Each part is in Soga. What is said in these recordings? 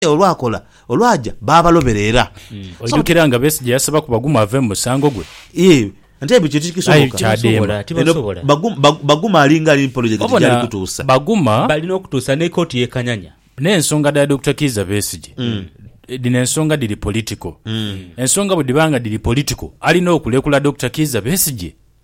olwakola olwaja baabalobera era. Oidhukira nga Besigye yasabaku Baguma ave mu musango gwe? Iyee ante ebyo kiti kisoboka? Tibasobola, tibasobola. Baguma ali nga ali ni polojekiti gyali kutuusa. Baguma. Bali n'okutuusa ni kooti y'e Kanyanya. N'ensonga dha Dokita Kiiza Besigye, dhino ensonga dhiri politiko. Ensonga bwe dhiba nga dhiri politiko, alina okulekula Dokita Kiiza Besigye?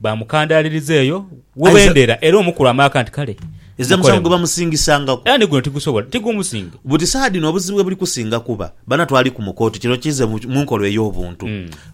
Baamukandaaliriza eyo we bendera era omukulu amaaka nti, Kale, Ezira musango mukolemu. gwe bamusingisangaku. Era ni guno tigusobola, tigumusinga. Buti saa dhino obuzibu we buli kusinga kuba bana twali ku mu kooti, kino kize mu mu nkola ey'obuntu.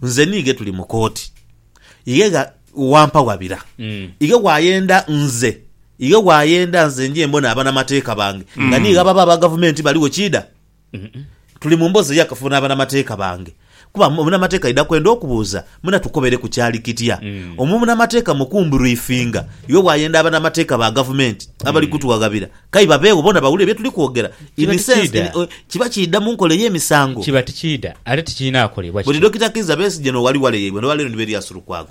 Nze ni ighe tuli mu kooti. Ighe gha wampa wabira. Ighe bw'ayenda nze, ighe bw'ayenda nze nje mbone abanamateeka bange nga ni ighe ababa aba gavumenti baligho kiidha? Tuli mu mboozi ey'akafubo n'abanamateeka bange, kuba omunamateeka aidha kwenda okubuuza, Muna tukobeireku kyali kitya? Omunamateeka mu kumburifinga, iwe bw'ayenda abanamateeka ba gavumenti abali kutughaghabira, kai babeegho bona bawulire bye tuli kwogera. In sense, kiba kiidha mu nkola ey'emisango. Kiba tikiidha, ate tikirina kolebwa kityo. Buli Dokita Kizza Besigye n'owali wale yaibwe, n'olwaleero ni Berias Lukwago.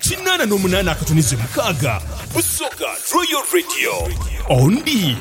Kinaana n'omunaana akatunize mukaaga Busoga Royal Radio Ondi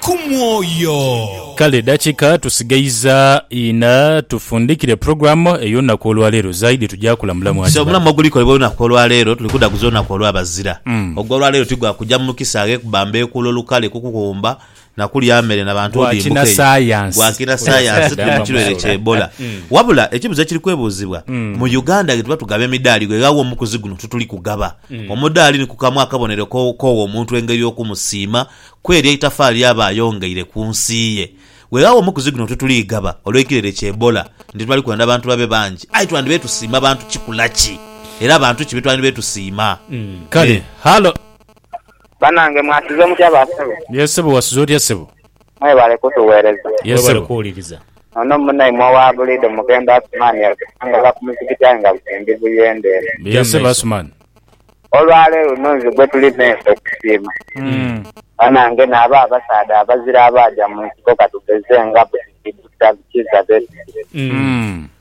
ku mwoyo. Kale edakika tusigaiza ina tufundhikire program ey'olunaku olwaleero zaidi tuja kulamulamu Hajji So Bali. omulamu ogulikolebwa olunaku olwaleero tuli kudhaguza olunaku olw'abazira. Ogw'olwaleero ti gwa kuja mu kisaghe kubamba ekuulo lukale kukughumba na kulya mere na bantu Gwa olimbuka eyo kinasayansi. gwa kinasayansi Omusaadha tuli mu kirwaire bamusuula. kya Ebola. Wabula ekibuzo ekiri kwebuuzibwa, mu Uganda ghetuba tugaba emidaali ghe ghawa omukuzi guno tutuli kugaba? Omudaali ni ku kamu akabonero ko- k'owa omuntu engeri y'okumusiima kw'eryo eitafaali ly'aba ayongeire ku nsi ye. Ghe ghawa omukuzi guno tutuli gaba olw'ekirwaire kya Ebola nti twali kwenda bantu babe bangi. Aye twandibaire tusiima bantu kikula ki? Era bantu ki be twandibaire tusiima? Kale, Me. halo. Banange mwasize mutya ba sebo. Ye sebo wasize otya ssebo. Mwebale kutuwereza. Ye Webale sebo. kuwuliriza. Ono munaimwa wa bulido Mukembo Asuman yatusangala ku muzikiti aye nga buli ndi buyende eno. Ye Gya sebo mumaiso. Asuman. Olwaleero luno nze gwetuli mensa okusiima. Banange naabo abasaadha abazira abaaja munsiko katugeze nga Bukiddi, Dokita Kiiza besigye. Uhmm.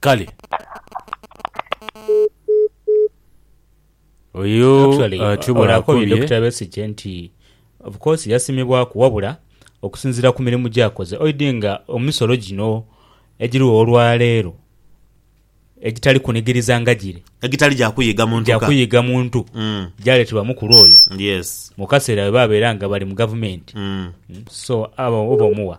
Kale. Oyo Actually, atyo bw'aba akobye akobye. Dokita Besigye nti of course yasimibwaku wabula okusinziira ku mirimu gy'akoze oidhi nga emisolo gino egiriwo olwaleero egitali kunigiriza nga giri Egitali gya kuyiga muntu gya ka. kuyiga muntu Mm. gyaleetebwa mukulu oyo Yes. mu kaseera bwe babeera nga bali mu gavumenti Mm. so abo oba omuwa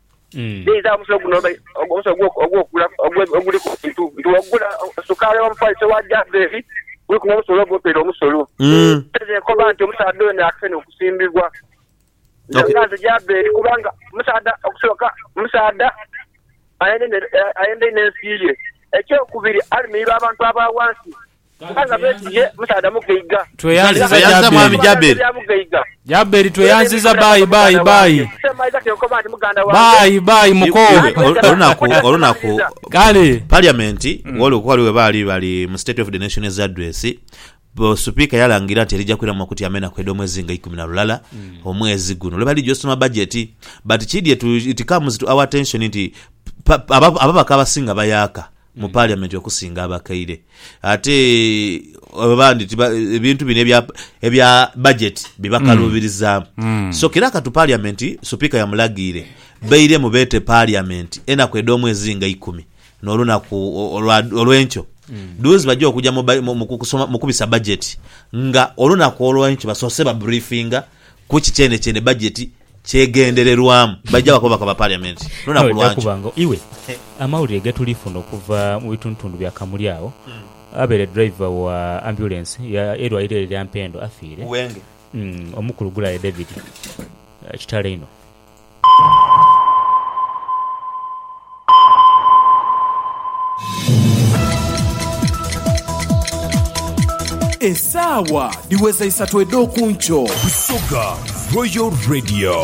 Dheiza omusawo guno omusawo ogw'okugula oguli ku bintu nti w'ogula sukaali oba omufaliso wa Jazeri guliku n'omusolo oba otoire omusolo. Dheiza enkoba nti omusaadha oyo naakise n'okusimbibwa. Nga nze Jazeri kubanga omusaadha okusooka omusaadha ayenda inho ensi ye. Eky'okubiri ali mu iba abantu aba ghansi. Aye nga beti ye musaadha mugaiga. Tweyanziza Jaberi. Jaberi tweyanziza baayi baayi baayi. Baayi baayi mukoo. Kale. Parliament woli okuba wali webaali bali mu state of the nation as address bo supika yalangira nti erija kwiramu makuti amenaku edhomwezi nga ikumi na lulala omwezi guno lwebali lija osoma budget but kidhye to it comes to our attention nti ababaka abasinga bayaaka mu Parliament okusinga abakaire. Ate abandi ti ebintu bino ebya ebya budget bibakaluubirizaamu. So kira katu Parliament Supika yamulagiire bairemu beete Parliament enaku edh'omwezi nga ikumi n'olunaku olwa olw'enkyo dhuuzi baja okuja mu ba mu kusoma mu kubisa budget nga olunaku olw'enkyo basoose ba briefinga ku ki kyeenekyeene budget Kyegendererwamu, baija bakoba bakoba Parliament lunaku lwa nkyo. Ojakuba nga iwe. Amawulire getulifuna okuva mu bitundutundu bya Kamuli agho, abeere driver wa ambulance ya erwaire eryo erya Mpendo afiire. Wenge. Omukulu Gulaye David. Kitalo inho. Esaawa dhiweza isatu edh'oku nkyo. Busoga Royal Radio.